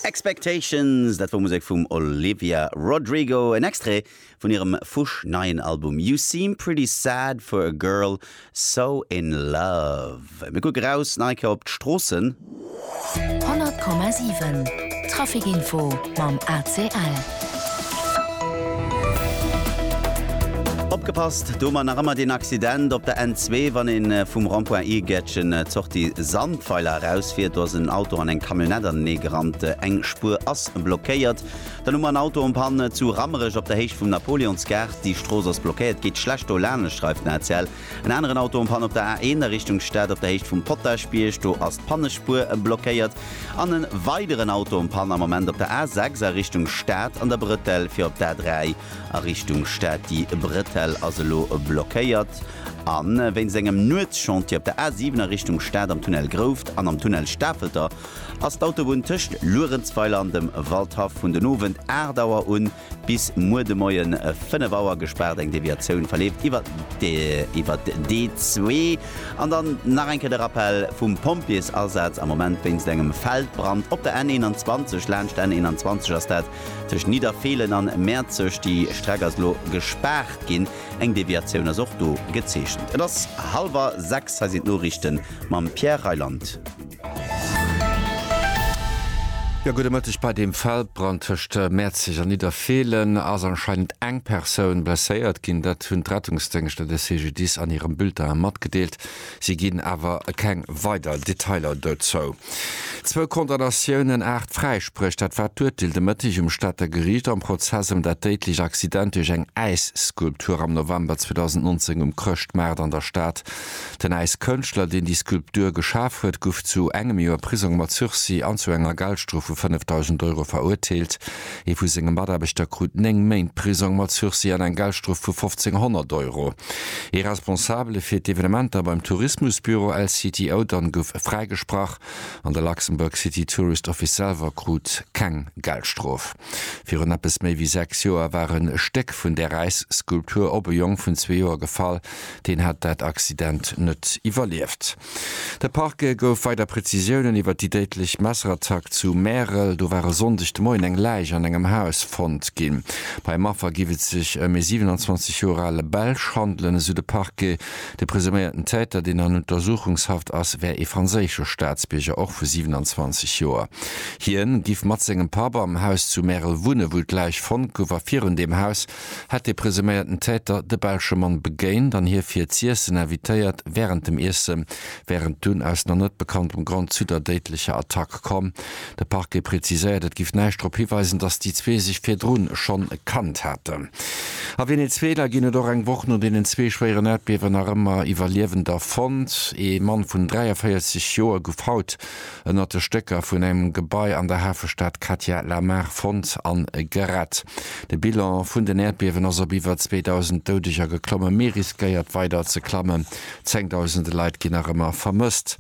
Expectations, dat wor Musek vum Olivia Rodrigo, en Extrait vun hirem fusch neien Album You Seem Pretty Sad for a Girl So In Love. Mir kucken raus nach eng Kéier op d'Stroossen. 100,7 Traffic Info mam ACL. Opgepasst, do mar nach ëmmer deen Accident op der N2, wann een vum Rond-point Iergäertchen d'Sortie Sandweiler eraus fiert. Do ass en Auto an eng Camionnette anenee gerannt, eng Spuer ass blockéiert. Dann hu mer en Auto en panne zu Rammerech op der Héicht vum Napoleonsgaart, déi Strooss ass blockéiert, geet schlecht do lanescht, schreift den ACL. En aneren Auto am Panne op der A1 a Richtung Stad op der Héicht vum Potaschbierg. Do ass d'Pannespuer blockéiert. An e weideren Auto am Panne am Ament op der A6 a Richtung Stad an der Bretelle fir op d'A3 a Richtung Stad. Déi Bretelle ass elo blockéiert a wéinst engem Nuetschantier op der A7 a Richtung Stad. Am Tunnel Grouft an am Tunnel Stafelter ass d'Autobunn tëscht Luerenzweiler an dem Waldhaff vun den Owend 8 Auer un Bis muer de Moien 5 Auer gespaart. Eng Deviatioun verleeft iwwer d'E2. An dann nach eng Kéier de Rappell vum Pompjeesasaz am Moment wéinst engem Feldbrand op der N21. Laanscht d'N21 ass dat tëscht Nidderfeelen an Mäerzeg. Déi Streck ass elo gespaart ginn. Eng Deviatioun ass och do gezeechent. Et ass hallwer 6. Hei sinn d'Noriichte mam Pierre Reyland. Jo, gudde Mëtteg. Bei deem Feldbrand tëscht Mäerzeg an Nidderfeelen ass anscheinend eng Persoun blesséiert ginn. Dat hunn d'Rettungsdéngschter de CGDIS an hirem Bulletin matgedeelt. Si ginn awer keng weider Detailer dozou. Zwou Condamnatiounen, aacht Fräispréch, dat war d'Urteel de Mëtteg um Stater Geriicht am Prozess ëm dat déidlecht Accident duerch eng Äisskulptur am November 2019 um Chrëschtmaart an der Stad. Den Äiskënschtler, deen déi Skulptur geschaf huet, guff zu engem Joer Prisong mat Sursis an zu enger Geldstrof vu 5.000 Euro verurteelt. Ee vu senge Mataarbechter krut 9 Méint Prisong mat Sursis an eng Geldstrof vu 1.500 Euro. Ee Responsabele fir d'Evenementer beim Tourismusbüro LCTO dann guff fräigesprach an de Luxembourg City Tourist Office selwer krut keng Geldstrof. Virun eppes méi wéi 6 Joer war en Stéck vun där Äisskulptur op e Jong vun zwee Joer gefall, Deen hat dat Accident net iwwerlieft. De Parquet gouf weider Prezisiounen iwwer déi déidlech Messerattack zu Märel. Do war e Sonndeg de Moien eng Läich an engem Haus fonnt ginn. Beim Affer géif et sech ëm ee 27 Joer ale Belsch handelen, esou de Parquet. De presuméierten Täter, deen an Untersuchungshaft ass, wär ee franséische Staatsbierger, och vu 27 Joer. Hien giff mat sengem Papp am Haus zu Märel wunnen, wou d'Läich fonnt gouf, a virun deem Haus hätt de presuméierten Täter de belsche Mann begéint an hie fir z'iessen invitéiert. Wärend dem Iesse wär et dunn aus nach net bekanntem Grond zu der déidlecher Attack komm. De Parquet preziséiert, et giff näischt drop hiweisen, datt déi zwee sech virdrun schonn kannt haten. A Venezuela ginn et och eng Woch no deenen zwee schwéieren Äerdbiewen nach ëmmer Iwwerliewender fonnt. Ee Mann vun 43 Joer gouf haut ënnert de Stécker vun engem Gebai an der Hafestad Katja Lamar fonnt a gerett. De Bilan vun den Äerdbiewen ass op iwwer 2.000 Doudeger geklomme mee riskéiert weider ze klammen. Zengdausende Leit ginn nach ëmmer vermësst.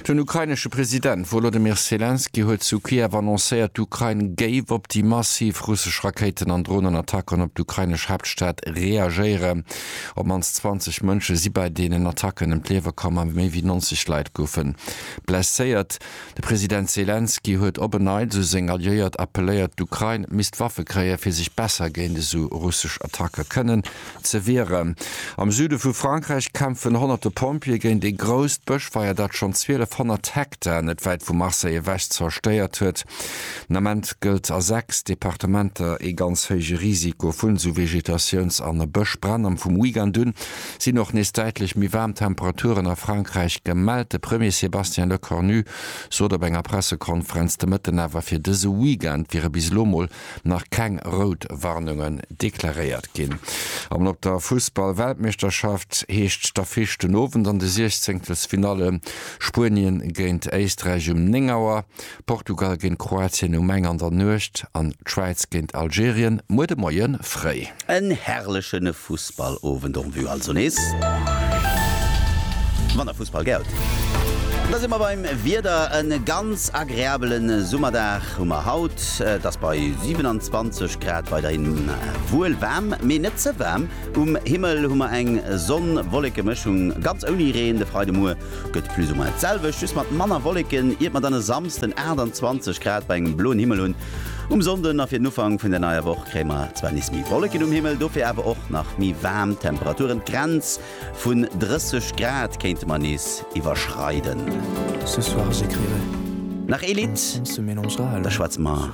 Den ukrainesche President Wolodymyr Selenskyj huet zu Kiew annoncéiert, d'Ukrain géif op déi massiv russesch Rakéiten an Dronenattacken op d'ukrainesch Haaptstad reagéieren. Op d'mannst 20 Mënsche si bei deenen Attacken ëm d'Liewe komm a méi wéi 90 Leit goufe Blesséiert. De President Selenskyj huet op en Neits u seng Alliéiert appelléiert, d'Ukrain misst Waffe kréien, fir sech besser géint esou russesch Attacke kënnen ze wieren. Am Süde vu Frankräich kämpfen honnerte Pompjeeë géint e grousst Bëschfeier, dat schonn 1200 Hektar net wäit vu Marseille ewech zerstéiert huet. Den Ament gëllt a sechs Departementer ee ganz héije Risiko vu Vegetatiouns an Bëschbränn. Am vum Weekend un Sinn och nees däitlech méi waarm Temperaturen a Frankräich gemellt. De Premier Sébastien Lecornu sot op enger Pressekonferenz de Mëtten awer, fir dëse Weekend wiere bis elo mol nach keng rout Warnungen deklaréiert ginn. An op der Fussball-Weltmeeschterschaft heescht d'Affiche den Owend an de Siechzéngtelsfinalle Spuenien géint Éisträich um 9 Auer Portugal géint Kroatien um eng an der Nuecht an d'Schwäiz géint Algerien muer de Moie fréi. En herrlechen Fussballowend en vue also nees. Wann der Fussball gär hutt, da si mer beim Wieder. En ganz agreabele Summerdag hu mer haut. Et ass bei 27 Grad weiderhin wuel waarm, mee net ze waarm. Um Himmel hu mer eng Sonn-Wolleke-Mëschung, ganz ouni Reen de Freide Muer. Gëtt plus ou moins d'selwecht, just mat manner Wolleken, iert mer dann e Samsden 28 Grad bei engem bloen Himmel hunn. Um Sonnden a fir den Ufank vun der neier Woch kréie mer zwar nees méi Wolleken um Himmel, dofir awer och nach méi waarm Temperaturen. D'Grenz vun 30 Grad kéinte mer nees iwwerschreiden. Nach ee Lidd, da schwätze mer.